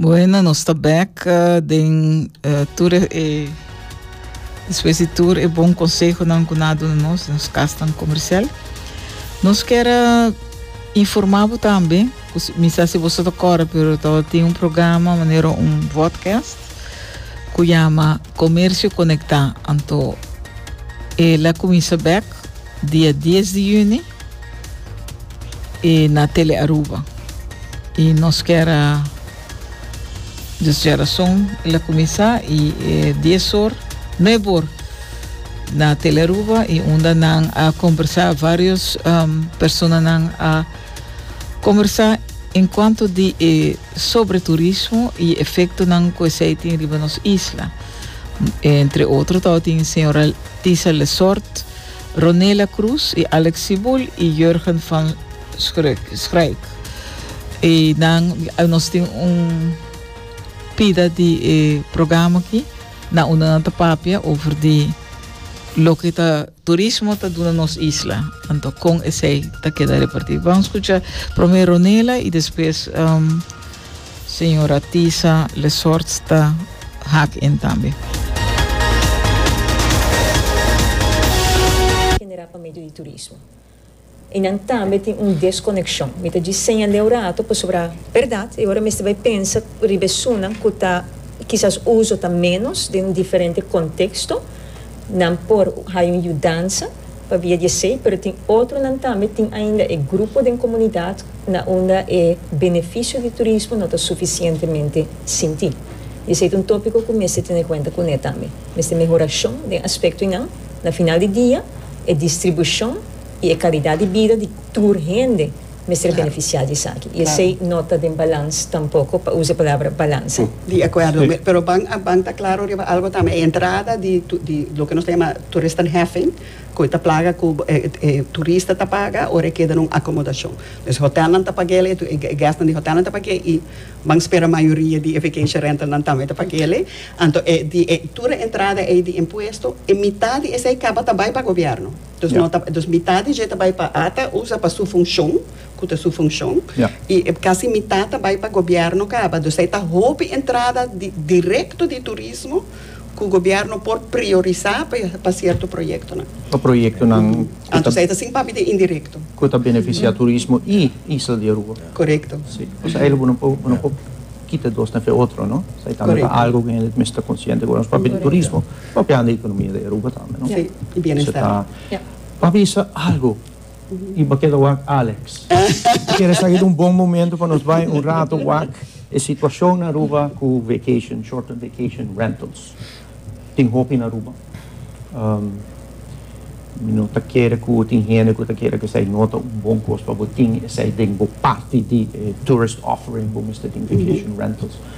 Bueno, nos está back uh, den uh, tur eh, después de tur e bom consejo nan kunado nos nos castan comercial. Nos quer informabo también, misa se você toca pero tava tem um programa maneira um podcast. ku yama Komersio Konektá, anto e la kuminsa bèk dia dies di yüni na Tele Aruba. I nos kier a dus jerason e la kuminsá i e dies or, nuebe or na Tele Aruba i unda nan a kombersá vários personanan a kombersá enkuanto di e Sobre turismo y efectonan cu esey tin riba nos isla. Entre otro tabatin señora Tisa Lessort, Ronela Cruz y Alex Sibul y Jurgen van Schruyck. Y nan, nos tin un pida di e programa aki, na unda nan ta papia over di loke ta Turismo ta duna nos isla, anto con esey ta keda reparti? Bam scucha prome Ronela y despues Sra. Tisa Lesorts ta hak in tambe. Genera pa medio di turismo. I nan tambe tin un deskonekshon. Mi ta djis seña leu rato pasobra bèrdat e ora mester bai pensa riba esunnan ku ta kisas uso ta ménos den un diferente konteksto, nan por haña un yudansa pabia di esei, pero tin otronan tambe tin ainda e grupo den komunidat na unda e benefisio di turismo no ta sufisientemente sinti. Di esei ta un tópiko ku mester tene kuenta kuné tambe. Mester mehorashon den aspektonan. Na final di dia, e distribushon i e kalidat di bida di tur hende mester benefisiá di esaki. I esei no ta den balans tampoko, pa usa e palabra balans. Sí, di akuerdo. Pero ban a ban ta klaro riba algo tambe. E entrada di di loke nos ta yama toeristenheffing, ku e ta plaga ku e turista ta paga ora e keda na un akomodashon. Hotelnan ta pag'e, e gèstnan di hotelnan ta pag'e i. Ban spera mayoria di e vacation rentalnan tambe ta pag'é lei. Anto e di e tur e entrada ei di impuesto, e mitat di esei caba ta bai pa gobierno. Dus no ta, dus mitat di dje ta bai pa a ta usa pa su funcion, cu ta su funcion, y e casi mitat ta bai pa gobierno caba. Dus ei ta hopi entrada di directo di turismo cu gobierno por priorisa pa cierto proyectonan. Pa proyectonan. Anto esei ta sin papia di indirecto. Cu ta beneficia turismo y Isla di Aruba. Korekto. Si. Pasobra e lobo no por no por kita dos na fe di otro, no? So e tambe ta algu ku hende ta mester ta konsiente ku nos papia di turismo, papia di ekonomia di Aruba tambe, no? Si. I bienestar. Pa bisa algu i bo keda wak Alex. Bo kere sa e ta un bon momento pa nos bai un rato wak e situashon na Aruba ku vacation, short-term vacation rentals. tin hopi in Aruba. Mi no ta kere ku tin hende ku ta kere ku esei no ta un bon kos pa bo tin esei den bo parti di e tourist offering, bo mester tin vacation rentals.